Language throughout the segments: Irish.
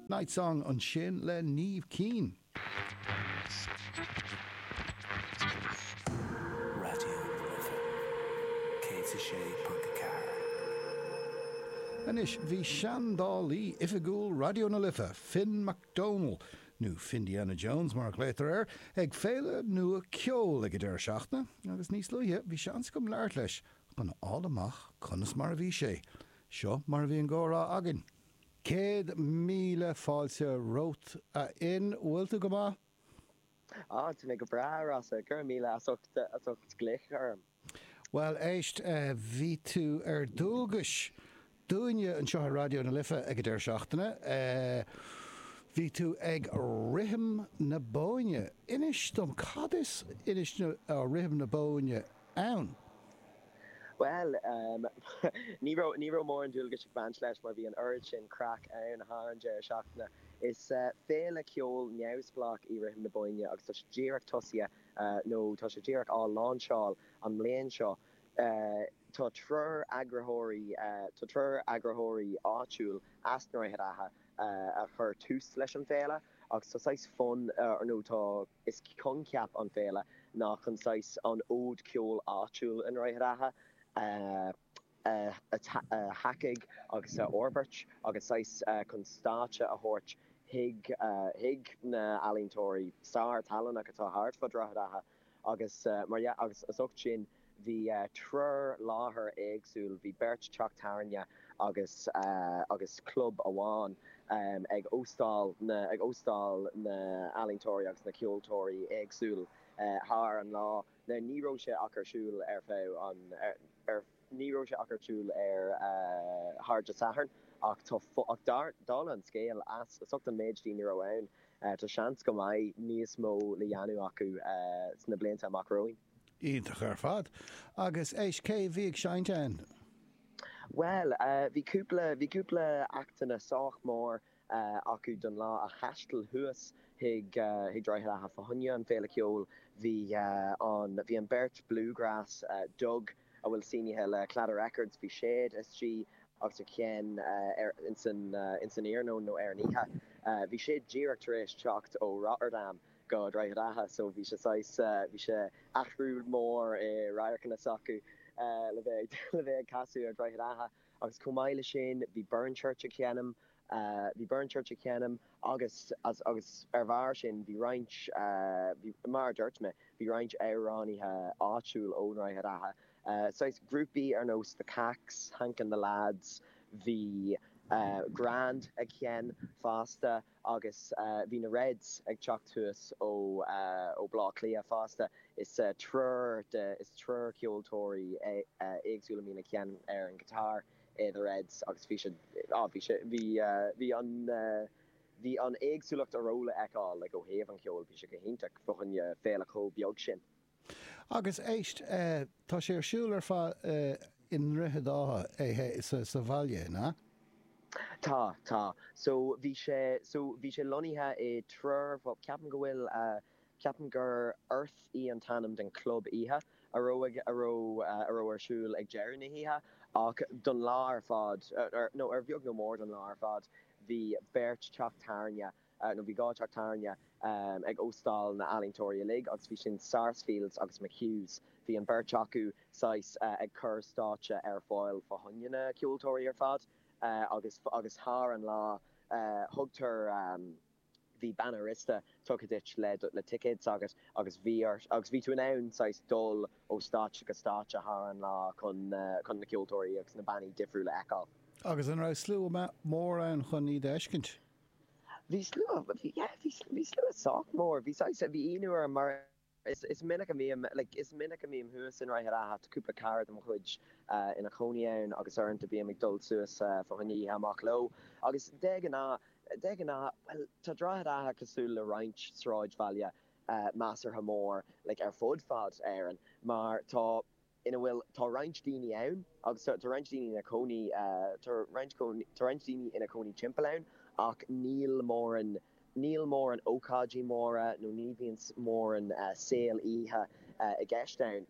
Night Song ansin le Niamh Keane. Raidió na Life 106.4. Anois bhí seandálaí oifigiúil Raidió na Life, Finn McDonnell, nó Findiana Jones mar a ghlaotar air, ag féile nua ceoil ag an deireadh seachtaine agus níos luaithe bhí seans agam labhairt leis chun a fháil amach conas mar a bhí sé Seo mar a bhí an gcomhrá againn. Céad míle fáilte romhat, a Fhinn. Bhfuil tú go maith? Ah, tá mé go breá, a Rossa. Go raibh míle as ucht, as ucht glaoch orm. Bhuel, éist, bhí tú ar dualgais dúinne anseo ar Raidió na Life ag an deireadh seachtaine. Bhí tú ag Rithim na Bóinne. Inis dom, cad is inis na, Rithim na Bóinne? ann? Bhuel, ní raibh, ní raibh mórán dualgais ag baint leis mar bhí an oiread sin craic ann thar an deireadh seachtaine. Is féile ceoil neamhspleách í Rithim na Bóinne agus tá sé díreach tosaithe, nó tá sé díreach á láinseáil an mbliain seo. Tá triúr eagraitheoirí, tá triúr eagraitheoirí áitiúil as Droichead Átha a chuir tús leis an bhféile agus tá saghas fonn, nó tá Is coincheap an féile ná chun saghas an fhóid ceoil áitiúil i nDroichead Átha a thacaigh agus a fhorbairt agus saghas chun stáitse a thabhairt chuig na ealaíontóirí sárthallannach atá thart fá Droichead Átha agus mar dhea agus as ucht sin Bhí triúr láthair éagsúil, bhí beirt teach tábhairne agus agus club amháin ag óstáil na ag óstáil na ealaíontóirí agus na ceoltóirí éagsúil thar an lá. Now ní raibh sé ach ar siúl ar feadh an ar ar ní raibh sé ach ar siúl ar thar Dé Sathairn ach tá ach dar dála an scéil as as ucht an méid daoine a raibh ann tá seans go mbeidh níos mó le dhéanamh acu sna blianta amach romhainn. Iontach ar fad. Agus éist, cé a bhí ag seinnt ann? Bhuel, bhí cúpla, bhí cúpla actanna sách mór acu don lá a thaisteal thuas chuig Droichead Átha fá choinne an féile ceoil, bhí an, bhí an beirt bluegrass, Dug a bhfuil sínithe le Claddagh Records, bhí siad istigh agus ag seinm ar, ins an, ins an iarnóin nó ar an oíche, bhí siad díreach tar éis teacht ó Rotterdam go Droichead Átha so bhí sé saghas, bhí sé, athrú mór i radharcanna s'acu le bheith, le bheith ag casadh ar Dhroichead Átha agus chomh maith le sin bhí Burnchurch ag seinm, bhí Burnchurch ag seinm agus, as, agus ar bharr sin bhí roinnt, bhí, mar a dúirt mé, bhí roinnt amhránaithe áitiúil ó Dhroichead Átha, saghas grúpaí ar nós The Kaks, Hank and the Lads, bhí Grand ag seinm fosta. Agus bhí na Reds ag teacht thuas ó Bhaile Átha Cliath fosta, is triúr, is, is triúr ceoltóirí éagsúil a mbíonn ag seinm ar an guitar i The Reds agus bhí siad, á, bhí sé, bhí, bhí an, bhí an éagsúlacht a raibh le fheiceáil, like, ó thaobh an cheoil, bhí sé go hiontach fá choinne féile chomh beag sin. Agus éist, tá sé ar siúl ar fad i nDroichead Átha, é sa bhaile, nó? Tá, tá. So, bhí sé, so, bhí sé lonnaithe i dtriúr, bhuel, ceapaim go bhfuil, ceapaim gur Earth í an t-ainm don chlub oíche a raibh, a raibh, a raibh ar siúl ag deireadh na hoíche. Ach don lá ar fad, nó ar bheag nó mór don lá ar fad, bhí beirt teach tábhairne, nó bhí dhá teach tábhairne ag óstáil na n-ealaíontóirí uilig agus bhí sin Sarsfields agus McHughs, bhí an beirt acu saghas ag cur stáitse ar fáil fá choinne na ceoltóirí ar fad agus agus thar an lá thugtar, bhí banna rosta tugtha duit le ticéad s'agat agus bhí ort, agus bhí tú in ann saghas dul ó stáitse go stáitse thar an lá chun na, chun na ceoltóirí agus na bannaí difriúla a fheiceáil. Agus an raibh slua mór ann chun iad a fheiscint? Bhí slua, yeah, bhí slua sách mór, bhí saghas, bhí ionadh orm mar is minic a mbím, like, is minic a mbím thuas i nDroichead Átha, tá cúpla cara de mo chuid ina chónaí ann agus uaireanta bím ag dul suas fá choinne oíche amach leo agus de ghnáth, de ghnáth, bhuel, tá Droichead Átha cosúil le roinnt sráidbhaile measartha mór, like, ar fud fad na hÉireann mar tá. ina bhfuil, tá roinnt daoine ann agus tá roinnt daoine ina chónaí, tá roinnt, tá roinnt daoine ina chónaí timpeall ann ach níl mórán, níl mórán ócáidí móra nó ní bhíonn mórán saol oíche i gceist ann.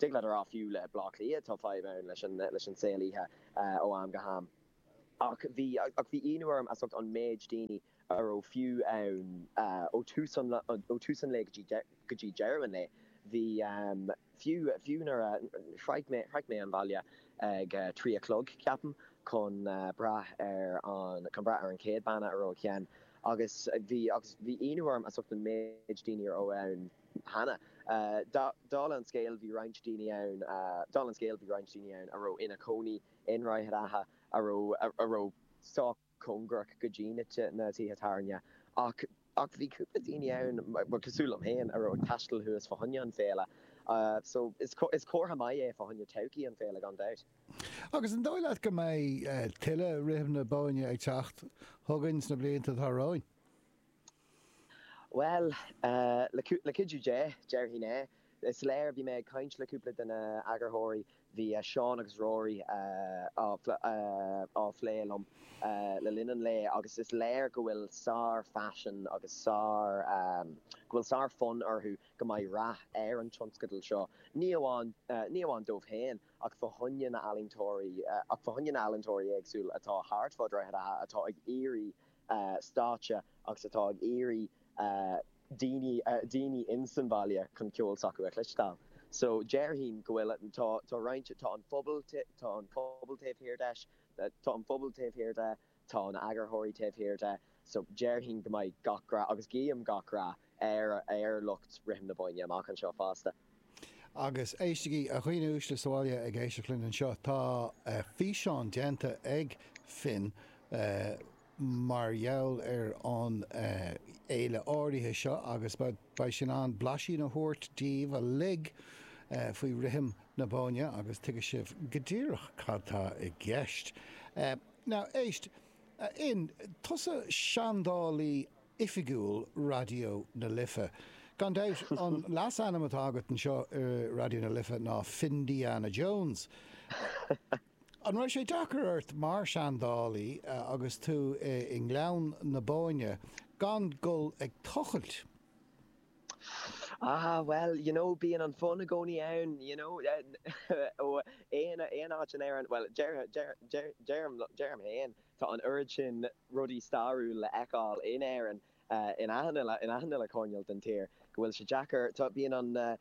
Thig leat a rá fiú le Bleá Cliath tá fadhb ann leis an, leis an saol oíche ó am go ham. Ach bhí, ach bhí ionadh orm as ucht an méid daoine a raibh fiú ann ó thús an, ó thús an lae go dtí, go dtí deireadh an lae. Bhí, fiú, fiú nuair a shroich mé, shroich mé an baile ag trí a chlog, ceapaim, chun breathnú ar an, chun breathnú ar an chéad banna a raibh ag seinm agus bhí, agus bhí ionadh orm as ucht an méid daoine a raibh ann cheana. Dála an scéil bhí roinnt daoine ann, dála an scéil bhí roinnt daoine ann a raibh ina chónaí i, ionaid áirithe a raibh a raibh sách cóngarach go dtí na na tithe tábhairne. Ach ach bhí cúpla daoine ann, bhuel, cosúil liom féin, a raibh ag taisteal thuas fá choinne an féile. So, is is comhartha maith é fá choinne todhchaí an féile, gan dabht. Agus an dóigh leat go mbeidh tuilleadh Rithim na Bóinne ag teacht chugainn sna blianta atá romhainn? Bhuel, le cuidiú Dé, déarfainn é. Is léir, bhí mé ag caint le cúpla de na eagarthóirí, bhí Seán agus Rory á phlé liom le linn an lae, agus is léir go bhfuil sárphaisean agus sár, go bhfuil sárfhonn orthu go mbeidh rath ar an tionscadal seo, ní amháin, ní amháin dóibh féin ach fá choinne na ealaíontóirí, ach fá choinne na ealaíontóirí éagsúil atá thart fá Dhroichead Átha atá ag iarraidh, stáitse agus atá ag iarraidh daoine daoine in san bhaile chun ceol s'acu a chloisteáil so déarfainn go bhfuil tá tá roinnt tá an phobail tá an pobal taobh thiar de tá an pobal taobh thiar de tá na eagarthóirí taobh thiar de so déarfainn go mbeidh gach rath agus guím gach rath ar ar lucht Rithim na Bóinne amach anseo fosta. Agus éistigí, a dhaoine uaisle sa bhaile ag éisteacht linn anseo, tá físeán déanta ag Finn mar gheall ar an fhéile áirithe seo agus beidh sé in ann blaisín a thabhairt daoibh uilig faoi Rithim na Bóinne agus tuigfidh sibh go díreach cad tá i gceist. Now, éist, a Fhinn, tusa seandálaí oifigiúil Raidió na Life. Gan dabht, an leasainm atá agat anseo i Raidió na Life ná Findiana Jones. An raibh sé deacair ort mar seandálaí agus tú i nGleann na Bóinne gan dul ag tochailt? Ah, bhuel, you know, bíonn an fonn i gcónaí ann, you know, aon áit in Éirinn, bhuel, deirim féin, Tá an oiread sin rudaí stairiúla le fheiceáil in Éirinn, in achan uile choirneál den tír, go bhfuil sé deacair, tá, bíonn an,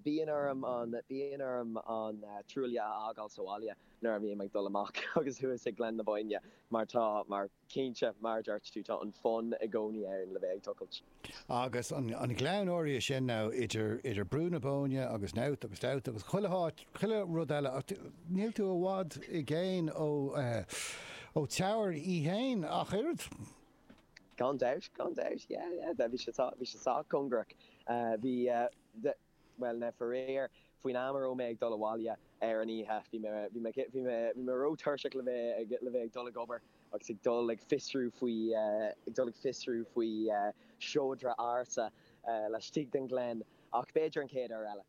bíonn orm an, bíonn orm an trowel a fhágáil sa bhaile nuair a bhím ag dul amach agus thuas ag Gleann na Bóinne mar tá, mar, cinnte, mar a dúirt tú, tá an fonn i gcónaí ann le bheith ag tochailt. Agus an Gleann áirithe sin now, idir, idir Brú na Bóinne agus Knowth agus Dowth agus chuile háit, chuile rud eile, níl tú i bhfad i gcéin ó, ó Teamhair í fhéin ach oiread. Gan dabht, gan dabht, yeah, yeah, bhí sé sách, bhí sé sách cóngarach, bhí, Bhuel, faraor, faoin am a raibh mé ag dul abhaile ar an oíche, bhí mé, bhí mé, bhí mé, bhí mé ró-tuirseach le bheith ag, le bheith ag dul ag obair agus ag dul ag fiosrú faoi, ag dul ag fiosrú faoi seodra ársa laistigh den ghleann ach b'fhéidir an chéad uair eile.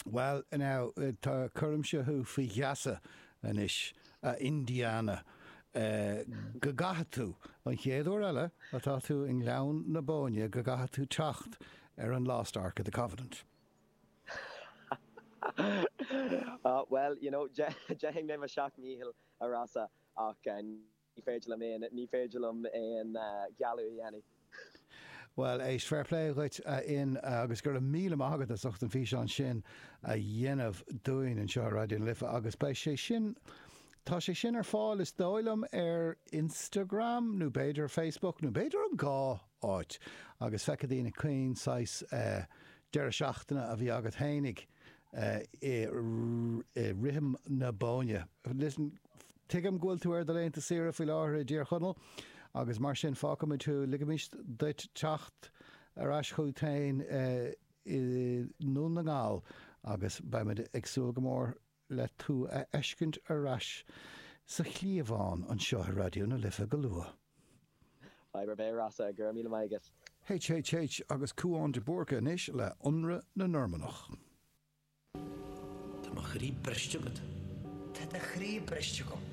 Bhuel, now, tá, cuirimse thú faoi gheasa anois, a Indiana, go gcaithfidh tú, an chéad uair eile atá tú i nGleann na Bóinne, go gcaithfidh tú teacht ar an Lost Ark of the Covenant. Ah, bhuel, you know, déanfaidh mé mo sheacht ndícheall, a Rossa, ach ní féidir liom aon, ní féidir liom aon ghealladh a dhéanamh. Bhuel, éist, fair play dhuit, a Fhinn, agus go raibh míle maith agat as ucht an físeán sin a dhéanamh dúinn anseo ar Raidió na Life, agus beidh sé sin, tá sé sin ar fáil, is dóigh liom, ar Instagram, nó b'fhéidir Facebook, nó b'fhéidir an dhá! áit, agus feicfidh daoine cén saghas deireadh seachtaine a bhí agat fhéinig i rithim na Bóinne. Listen, Tuigim go bhfuil tú ar do laethanta saoire faoi láthair i dTír Chonaill, agus mar sin fágfaimid thú, ligfimid duit teacht ar ais chugat féin i nDún na nGall, agus beimid ag súil go mór le tú a fheiscint ar ais sa chliabhán anseo i Raidió na Life go luath. Bairbre Beár Rossa, Go raibh míle maith agat. HHH agus Cúán de Búrca anois le ionradh na Normannach. Tá mo chroí briste agat. Tá do chroí briste agam.